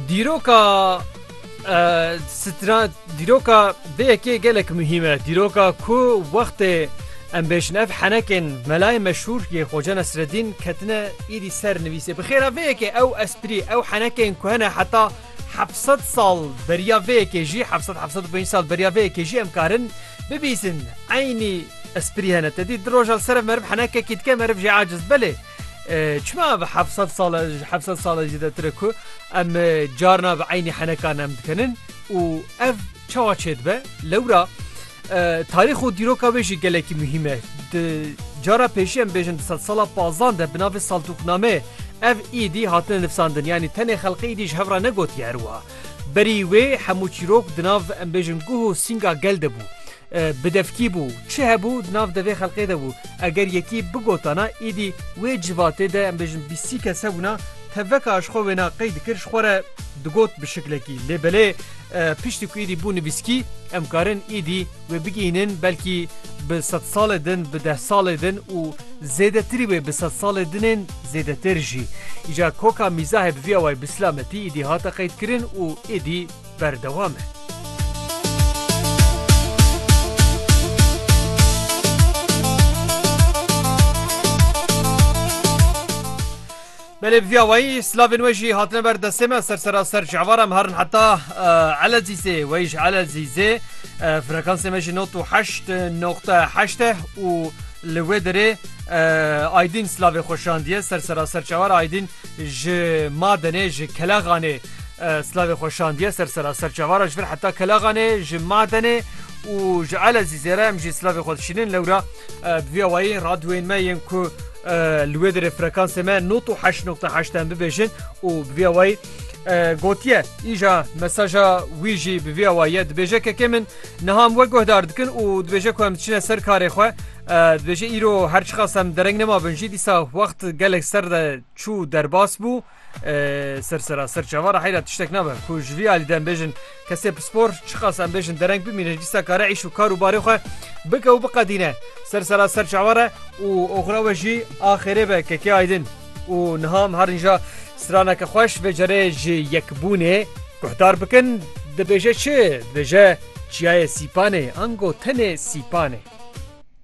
Dîroka stran dîroka vê yekê gelek muhîm e. Dîroka ku wextê em bêjin ev henekên melayê meşhûr yê Xoca Nesreddîn ketine êdî ser nivîsê. Bi xêra vê yekê ew esprî ew henekên ku hene heta hevsed sal beriya vê yekê jî hevsed hevsed û pênc sal beriya vê yekê jî em karin bibîsin. Eynî esprî hene. Te dît di roja li ser ev meriv henekekî dike meriv jê aciz belê. Çima ev heft sed sal e ji heft sed sal e zêdetir e ku em carna bi eynî heneka nem dikinin û ev çawa çêdibe lewra tarîx û dîroka wê jî gelekî muhîm e di cara pêşî em bêjin di sed sala pazdan de bi navê saltûkname ev îdî hatine nifsandin yanî tenê xelqê îdî ji hev re negotiye her wiha berî wê hemû çîrok di nav em bêjin guh û sînga gel de bû Bidevkî bû, çi hebû di nav devê xelqê de bû. Eger yekî bigotana îdî wê civatê de em bêjin bîsî kes hebûna, tevveka ji xwe wêna qey dikir ji xwe re digot bi şiklekî. Lê belê piştî ku îdî bû nivîskî em karin îdî wê bigihînin belkî bi sedsalê din, bi dehsalê din û zêdetirî wê bi sedsalê dinên zêdetir jî. Îja koka mîzahê bi vî awayî bi silametî îdî hate qeydkirin û îdî, berdewam e. Belê vîya wayî slavên we jî hatine ber destê me ser sera ser ji evara em herin heta elezîzê weyî ji elezîzê frekansê me jî not û heşt noqta heşt e û li wê derê aydîn slavê xweşandiye ser sera ser çewar aydîn Ji Madenê, ji Keleğanê slavê xwe şandiye ser sera serçavara ji vir heta Keleğanê, ji Madenê û ji Elezîzê re em jî slavê xwe dişînin. Lewra bi vî awayî radyoyên me yên ku li wê derê frekansê me not û heşt noqta heşt em bibêjin û bi vî awayî gotiye îja mesaja wî jî bi vî awayiye dibêje kekê min niha em we guhdar dikin û dibêje ku em diçine ser karê xwe Dibêje îro her çiqas em dereng nemabin jî dîsa wext gelek ser de çû derbas bû sersera ser çavara heyra tiştek nabe ku ji vî alî de em bêjin kesê pispor çiqas em bêjin dereng bimîne dîsa kare îş û kar û barê xwe bike û biqedîne sersera ser çavare û oxira we jî axêrê be kekê aydin û niha em herin ja straneke xweş vê cerê ji yekbûnê guhdar bikin dibêje çi dibêje çiyayê sîpanê ango tenê sîpanê.